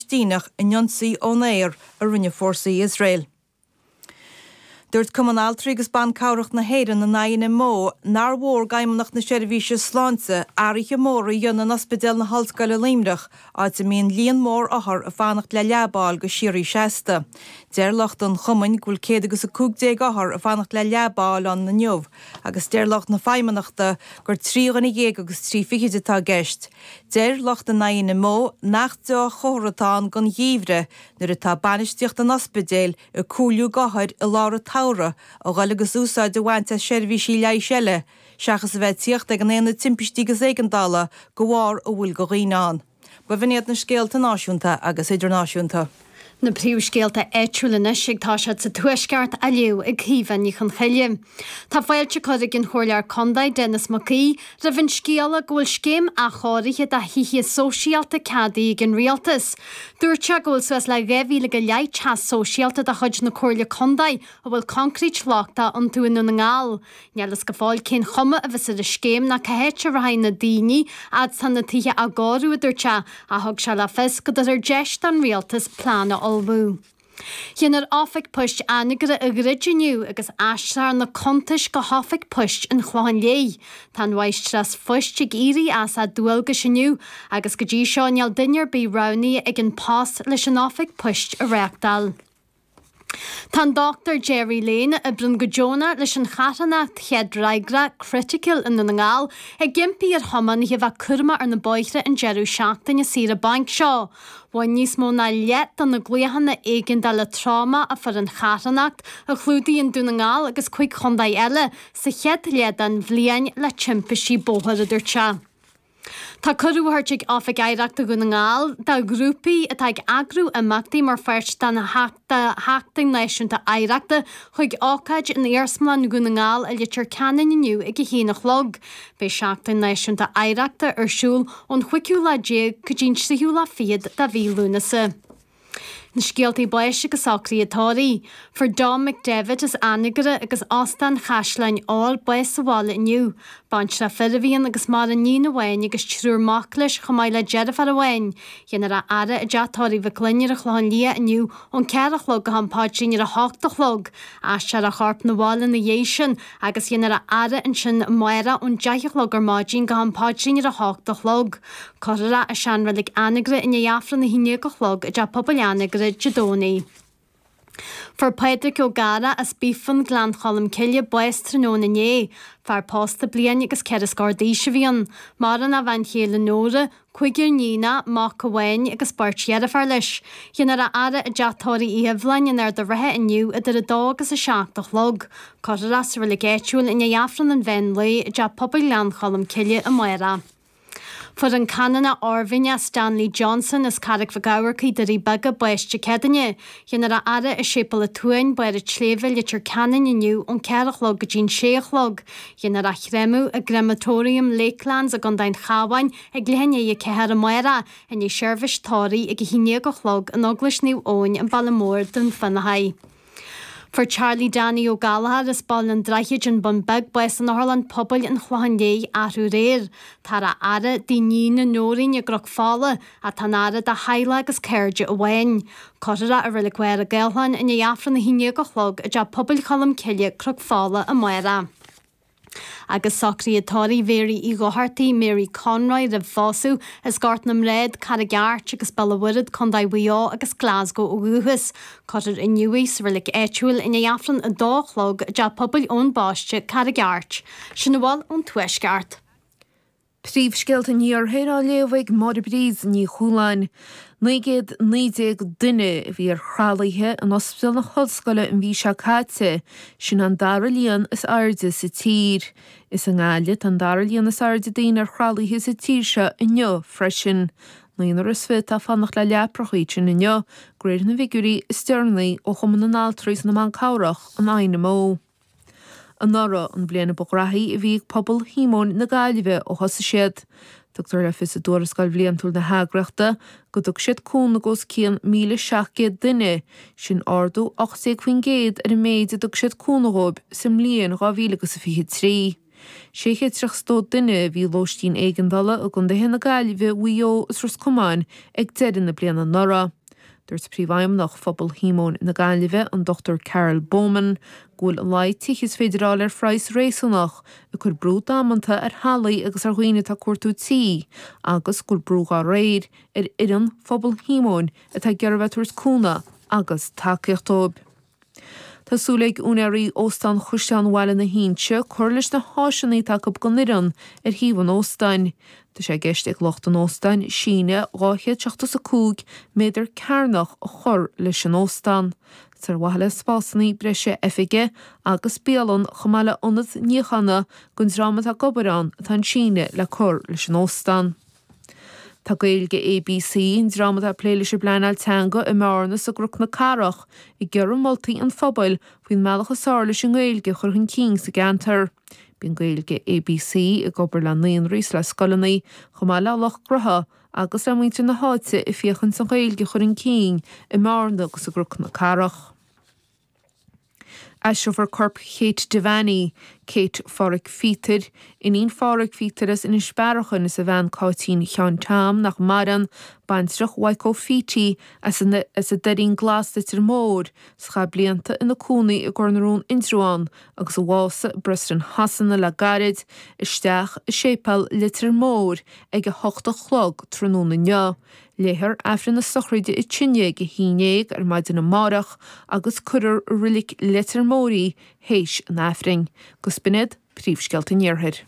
Palaistíneach in ionsaí ón aer a rinne fórsaí Iosrael. Dúirt Cumann Altraí agus Ban Cabhrach na hÉireann, an INMO, nár mhór d'Fheidhmeannacht na Seirbhíse Sláinte athruithe móra a dhéanamh in Ospidéal na hOllscoile Luimneach, áit a mbíonn líon mór othar ag fanacht le leaba a fháil go síoraí seasta. Deir lucht an Chumainn go bhfuil céad agus a cúig déag othar ag fanacht le leaba a fháil ann inniu agus deir lucht na Feidhmeannachta gur trí dhuine dhéag agus trí fichid atá i gceist. Deir lucht an INMO nach dea-chomhartha atá ann don gheimhreadh nuair atá bainistíocht an ospidéil ag comhairliú d'othair i lár an tsamhraidh a dhul agus úsáid a bhaint as seirbhísí leighis eile seachas a bheith ag tíocht ag an Aonad Timpistí agus Éigeandála de bharr a bhfuil de dhaoine ann. Ba bh'in iad na scéalta náisiúnta agus idirnáisiúnta. Na príomhscéalta áitiúil anois agus tá siad sa Tuaisceart á léamh ag Caoimhe Ní Chonchoille. Tá fáilte curtha ag an Chomhairleoir Condae, Denis Mac Aoidh, roimh an scéala go bhfuil scéim athchóirithe do thithe sóisialta ceadaithe ag an Rialtas. Dúirt sé go bhfuil suas le 2,000 go leith teach sóisialta de chuid na Comhairle Condae a bhfuil concrete lochtach iontu i nDún na nGall. Níl fhios go fóill cén chuma a bheas ar an scéim ná cá háit a rachaidh na daoine fhad is tá na tithe á gcóiriú, a dúirt sé, ach thug sé le fios go dtabharfar deis don rialtas plean a ullmhú. Dhéanfar Oifig Poist Anagaire a dhruid inniu agus aistreofar na cuntais go hOifig Poist an Chlocháin Léith. Tá an mháistreás phoist ag éirí as a dualgais inniu agus go dtí seo níl duine ar bith roghnaithe ag An Post leis an oifig poist a reáchtáil. Tá an Dr Gerry Lane, a oibreann go deonach leis an charthanacht chéad fhreagra Critical i nDún na nGall, ag impí ar thiománaithe bheith cúramach ar na bóithre an deireadh seachtaine saoire bainc seo. Bhain níos mó ná leath de na glaochanna éigeandála tráma a fuair an charthanacht, a chlúdaíonn Dún na nGall agus cuig chontae eile, sa chéad leath den bhliain le timpistí bóthair, a dúirt sé. Tá cuireadh tabhartha ag Oifig Oidhreachta Dhún na nGall do ghrúpaí atá ag eagrú imeachtaí mar pháirt den Sheachtain Náisiúnta Oidhreachta chuig ócáid in Iarsmalann Dhún na nGall i Leitir Ceanainn inniu ag a haon a chlog. Beidh Seachtain Náisiúnta Oidhreachta ar siúl ón chúigiú lá déag go dtí'n tríú lá fichead de mhí Lúnasa. Na scéaltaí báis agus socruithe tórraimh. Fuair Dom McDevitt as Anagaire agus Óstán Chaisleáin Óir bás sa bhaile inniu. Baintreach fir a bhí ann agus maireann iníon amháin agus triúr mac leis chomh maith le deirfiúr amháin. Dhéanfar é a fhaire i dTeach Tórraimh Mhic Fhloinn ar an Chlochán Liath inniu ón ceathair a chlog go ham paidrín ar a hocht a chlog. Aistreofar a chorp 'na bhaile ina dhiaidh sin agus dhéanfar é a fhaire ansin amárach ón deich a chlog ar maidin go ham paidrín ar a hocht a chlog. Cuirfear é i seanreilig Anagaire i ndiaidh Aifreann na haon déag a chlog i dTeach Pobail Anagaire Dé Domhnaigh. Fuair Pádraic Ó Gadhra as Bíofán, Gleann Cholm Cille, bás tráthnóna inné. Fear pósta bliain agus ceithre scór d'aois a bhí ann. Maireann a bhean chéile Nóra, cúigear iníonacha, mac amháin agus beirt dheirféar leis. Dhéanfar a fhaire i dteach tórraimh Uí Sheibhleáin in Ard an Rátha inniu idir a dó agus a seacht a chlog, cuirfear é sa reilig áitiúil i ndiaidh Aifreann an mheán lae i dTeach Pobail Ghleann Cholm Cille amárach. Fuair an Canónach Oirmhinneach Stanley Johnson as Carraig Mhic Eachmharcaigh, Doirí Beaga, bás Dé Céadaoine, Dhéanfar a fhaire i Séipéal a' tSuain, Barr a' tSléibhe, Leitir Ceanainn inniu ón cheathair a chlog go dtí an sé a chlog. Dhéanfar a chréamadh i gCrematorium Lakelands i gContae an Chabháin ag leath i ndiaidh a 4 amárach i ndiaidh seirbhís tórraimh ag a haon déag a chlog in Eaglais Naomh Eoin an Baile Mór Dún Fionnachaidh. Fuair Charlie Danny Ó Gallchóir as Baile an Droichid an Bun Beag bás in Otharlann Pobail an Chlocháin Léith athrú aréir. Táthar á fhaire i dtigh a iníne Noreen i gCnoc Fola, ach tá an fhaire dá theaghlach agus cairde amháin. Cuirfear é i Reilig Mhachaire Gathlán i ndiaidh Aifreann a haon déag a chlog i dTeach Pobail Cholm Cille, Cnoc Fola, amárach. Agus socruithe tórraimh Mhary Uí Dhochartaigh, Mary Conroy, roimh phósadh, as Gort na mBrád, Carraig Airt, agus Béal an Mhuirthead, Co. Mhaigh Eo, agus Glasgow ó dhúchas. Cuirfear í inniu, sa Reilig áitiúil, i ndiaidh Aifreann a dó a chlog i dTeach Pobail Eoin Baiste, Carraig Airt. Sin a bhfuil ón Tuaisceart. Príomhscéalta an Iarthair á léamh ag Máire Bríd Ní Chualáin. 919 duine a bhí ar thralaithe in Ospidéal na hOllscoile an mhí seo caite, sin an dara líon is airde sa tír. Is i nGaillimh an dara líon is airde daoine ar thralaithe sa tír seo inniu freisin. Naonúr is fiche atá ag fanacht le leaprachaí ansin inniu, de réir na bhfigiúirí is deireanaí ó Chumann na nAltraí is na mBan Cabhrach, an INMO. Anuraidh an bhliain ba ghraithí a bhí ag pobal Shíomóin na Gaillimhe ó thosaigh siad. Tugtar le fios i dtuarascáil bhliantúil na heagraíochta go dtug siad cúnamh d'os cionn 1,700 duine, sin ardú 18 faoin gcéad ar an méid a dtug siad cúnamh dhóibh sa mbliain 2023. 632 duine a bhí i lóistín éigeandála i gcondaetha na Gaillimhe, Mhaigh Eo is Ros Comáin ag deireadh na bliana anuraidh. Dúirt Príomhfheidhmeannach Phobal Shíomóin na Gaillimhe, an Dr Carol Baumann, go bhfuil an laghad tithe is féidir a fháil ar phraghas réasúnach ag cur brú damanta ar theaghlaigh agus ar dhaoine atá ag cuartú tí agus go bhfuil brú dá réir ar fhoireann Phobal Shíomóin atá ag iarraidh a bheith ag tabhairt cúnamh agus tacaíocht dóibh. Tá súil ag úinéirí Óstán Chaisleán Bhaile na hInse cur leis na háiseanna atá acu don fhoireann ar shuíomh an óstáin. Tá sé i gceist ag lucht an óstáin síneadh dhá chéad seachtó is a cúig méadar cearnach a chur leis an óstán, ar mhaithe le spásanna breise oifige agus bialann, chomh maith le ionad níochána don dream atá ag obair ann atá an síneadh le cur leis an óstán. Tá Gaeilge ABC, an dream atá ag plé leis an bpleanáil teanga i mBearna is i gCroc na Cathrach, ag iarraidh moltaí an phobail faoin mbealach is fearr leis an nGaeilge a chur chun cinn sa gceantar. Bíonn Gaeilge ABC ag obair le naíonraí is le scoileanna, chomh maith le lucht grutha agus le muintir na háite ag féachaint leis an nGaeilge a chur chun cinn i mBearna agus i gCroc na Cathrach. Aistreofar corp Kate Devaney, Céit Pháraic Phíotair, iníon Pháraic Phíotair as Inis Bearachain is a bhean Cáitín Sheáin Tom, nach maireann, baintreach Waiko Fiti, as an Doirín Glas Leitir Móir is a chaith blianta ina cónaí i gCorr na Rón Indreabhán agus a bhásaigh i bPreston Shasana le gairid isteach i séipéal Leitir Móir ag a hocht a chlog tráthnóna inniu. Léifear aifreann na sochraide i dtaobh istigh de a haon déag ar maidin amáireach agus cuirfear i roilic Leitir Móir í th'éis an aifrinn. Agus b'in iad, Príomhscéalta an Iarthair.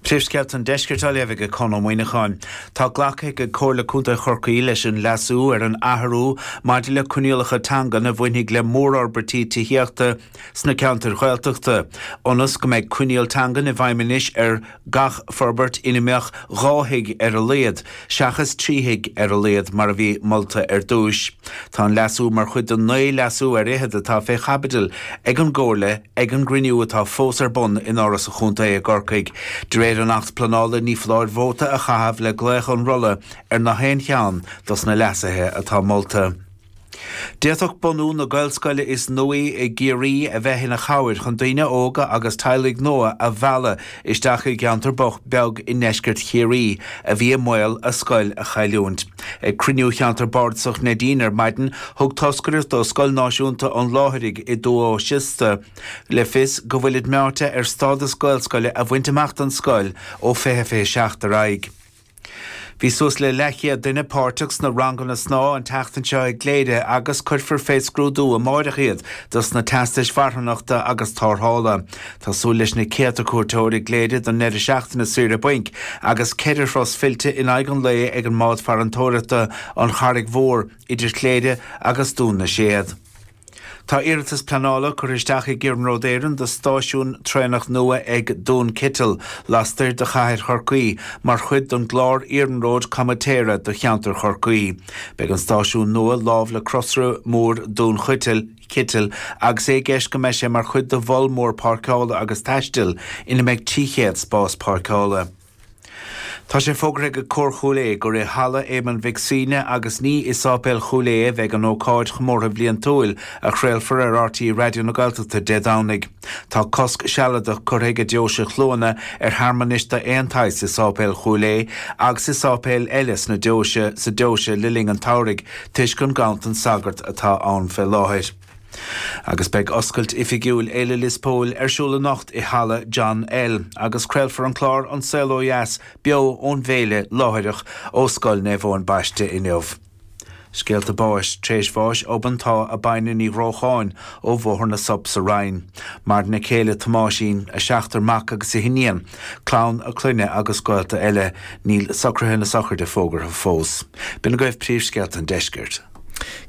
Príomhscéalta an Deiscirt á léamh ag Conn Ó Muíneacháin. Tá glactha ag Comhairle Contae Chorcaí leis an leasú ar an athrú maidir le coinníollacha teangan a bhainfidh le mórfhorbairtí tithíochta sna ceantair Ghaeltachta, ionas go mbeidh coinníoll teangan i bhfeidhm anois ar Gach forbairt ina mbeadh dhá thigh ar a laghad, seachas trí thigh ar a laghad mar a bhí molta ar dtúis. Tá an leasú mar chuid den naoi leasú ar fhichead atá fé chaibidil ag an gComhairle ag an gcruinniú atá fós ar bun in Áras an Chontae i gCorcaigh. De réir an Acht Pleanála ní foláir vóta a chaitheamh le glaoch an rolla ar nach aon cheann dos na leasuithe atá molta. D'fhéadfadh bunú na Gaelscoile is nuaí i gCiarraí a bheith ina chabhair chun daoine óga agus teaghlaigh nua a mhealladh isteach i gceantar bocht beag i ndeisceart Chiarraí a bhí i mbaol a scoil a chailliúint. Ag cruinniú Cheantar Bardasach Neidín ar maidin, thug toscaireacht do Scoil Náisiúnta an Láithrigh i dTuath Siosta le fios go bhfuilid meáite ar stádas Gaelscoile a bhaint amach don scoil ó 2027 ar aghaidh. Bhí suas le leathchéad duine páirteach sna ranganna snámha an tseachtain seo i gCléire agus cuirfear fé scrúdú amáireach iad dos na teastais mharthanachta agus tarrthála. Tá súil leis na céadta cuairteoir i gCléire don ndeireadh seachtaine saoire bainc agus ceithre thuras fillte in aghaidh an lae ag an mbád farantóireachta An Charraig Mhór idir Chléire agus Dún na Séad. Tá iarratas pleanála curtha isteach ag Iarnród Éireann do stáisiún traenach nua ag Dún Cítil, lastoir de chathair Chorcaí, mar chuid den gclár iarnróid comaitéara do cheantar Chorcaí. Beidh an stáisiún nua lámh le crosaire mór Dún Cítil agus é i gceist go mbeidh sé mar chuid de mhol mór páirceála agus taistil ina mbeidh 300 spás páirceála. Tá sé fógartha ag Cór Chúil Aodha gur i Halla Éamonn Mhic Shuibhne agus ní i Sáipéal Chúil Aodha a bheidh an ócáid chomórtha bhliantúil, a chraolfar ar RTÉ Raidió na Gaeltachta Dé Domhnaigh. Tá cosc sealadach curtha ag an deoise Chluana ar shearmanais d'aon tsaghas i Sáipéal Chúil Aodha agus i sáipéil eile sna deoise sa deoise le linn an tsamhraidh toisc an ganntan sagart atá ann fé láthair. Agus beidh oscailt oifigiúil Fhéile Lios Póil ar siúl anocht i Halla John L agus craolfar an clár An Saol Ó Dheas beo ón bhféile láithreach ó Scoil Naomh Eoin Baiste inniu. Scéalta báis, tréis bháis obann tá Abina Ní Ghrócháin ó Bhóthar na Sop sa Rinn. Maireann a céile Tomáisín, a seachtar mac agus a hiníon, clann a clainne agus gaolta eile. Níl socruithe na sochraide fógartha fós. B'in agaibh príomhscéalta an deiscirt.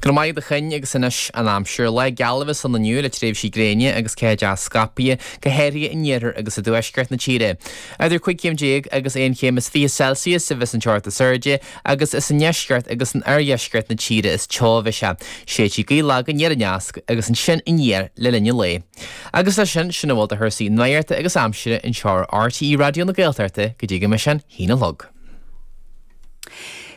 Go raibh maith agat a Choinn agus anois an aimsir. Lá geal a bheas ann inniu le tréimhsí gréine agus ceathanna scaipthe, go háirithe in iarthar agus i dtuaisceart na tíre. Idir cúig chéim déag agus aon chéim is fiche Celsius a bheidh an teocht is airde agus is i ndeisceart agus in oirdheisceart na tíre is teo a bheidh sé. Séidfidh gaoth lag an deisceart agus ansin aniar le linn an lae. Agus leis sin, sin a bhfuil de chúrsaí nuachta agus aimsire anseo ar RTÉ Raidió na Gaeltachta go dtí go mbeidh sinn chun a haon a chlog.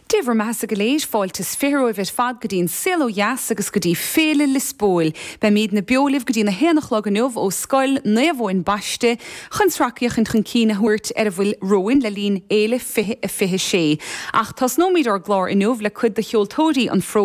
Dé bhur mbeatha-sa go léir. Fáilte is fiche romhaibh ar fad go dtí an Saol Ó Dheas agus go dtí Féile Liospóil. Beimídne beo libh go dtí'n a haon a chlog inniu ó Scoil Naomh Eoin Baiste chun sracfhéachaint chun cinn a thabhairt ar a bhfuil romhainn le linn Fhéile 2026. Ach tosnóimíd ár gclár inniu le cuid de cheoltóirí an